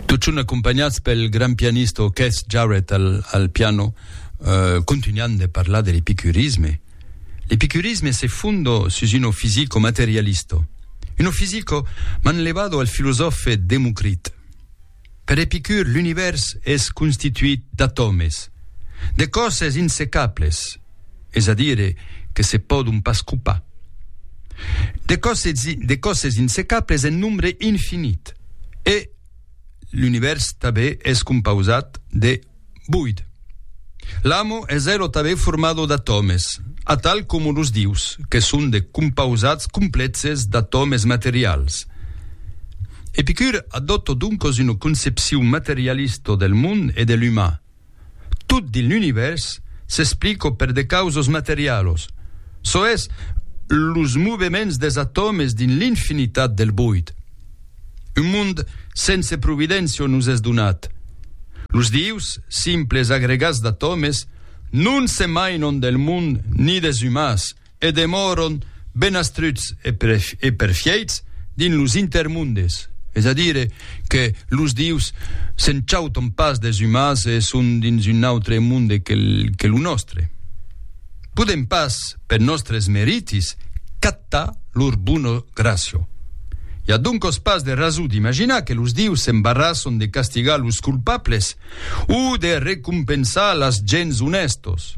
Totjorn acompanhats pel gran pianista o Keith Jarrett al, al piano, eh, contunhan de parlar de l'epicurisme. L'epicurisme se fundo sus uno fisico materialisto, uno fisico manlevado al filosòfe Democrit. Per Epicur l'univèrs es constituit d'atòmes, de còsses insecables, es a dire que se pòdon pas copar. De còsses de còsses insecables en nombre infinit e l'univèrs tanben es compausat de Boid. L'amo es elo tanben formado d'atòmes, atal coma los dius, que son de compausats complèxes d'atòmes materials. Epicur adòpta doncas una concepcion materialista del mond e de l'umà. Tot dins l'univèrs s'explica per de causas materialas, çò es, los movements des atòmes dins l'infinitat del boid. Un mond sense providéncia nos es donat. Los dius, simples agregats d'atòmes, non se mainon del mond ni des umans e demòron benastruts e perfièits dins los intermondes, es a dire que los dius se'n chauton pas des umans e son dins un autre monde que lo nòstre. Podèm pas, per nòstres meritis, captar lor bona gràcia. I a doncòs pas de rason d'imaginar que los dius s'embarrasson de castigar los culpables o de recompensar las gents onèstos.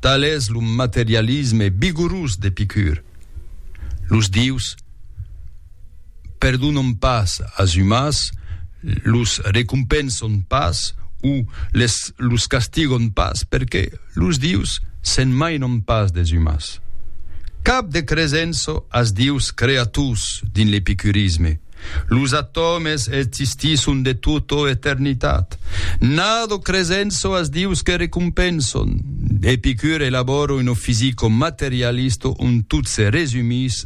Tal es lo materialisme vigorós d'Epicur. Los dius. perdonam pas as umans, los recompensam pas o les los castigam pas perque los dius se'n mainan pas des umans. Cap de cresença as dius creators dins l'epicurisme. Los atòmes existisson de tota eternitat. Nado cresença as dius que recompensan. Epicur elabòra una fisica materialista ont tot se resumís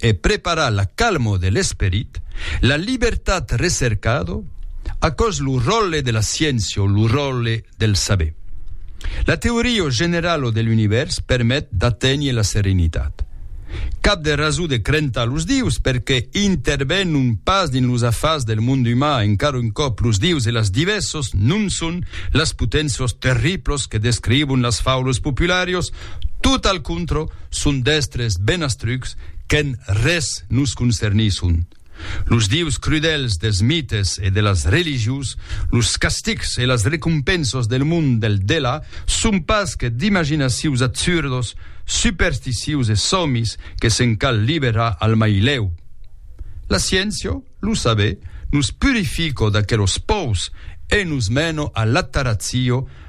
e preparar la calmo de l'esperit, la libertat recercado, aquò's lo ròlle de la sciéncia o lo ròlle del saber. La teoria generalo de l'univèrs permet d'aténher la serenitat. Cap de rason de crentar los dius perque intervenon pas dins los afars del monde uman, encara un còp los dius e las divèssos non son las potencios terriblos que descrivon las faulos popularios, tot al contrò, son d'èstres ben astrucs qu'en res nos concernisson. Los dieus crudèls dels mites e de las religions, los castigs e las recompensos del mond del delà son pas que d'imaginacions absurdos, supersticious e sòmis que se'n cal liberar al mai lèu. La sciéncia, lo saber, nos purifico d'aquelos pòus e nos meno a l'ataratzio,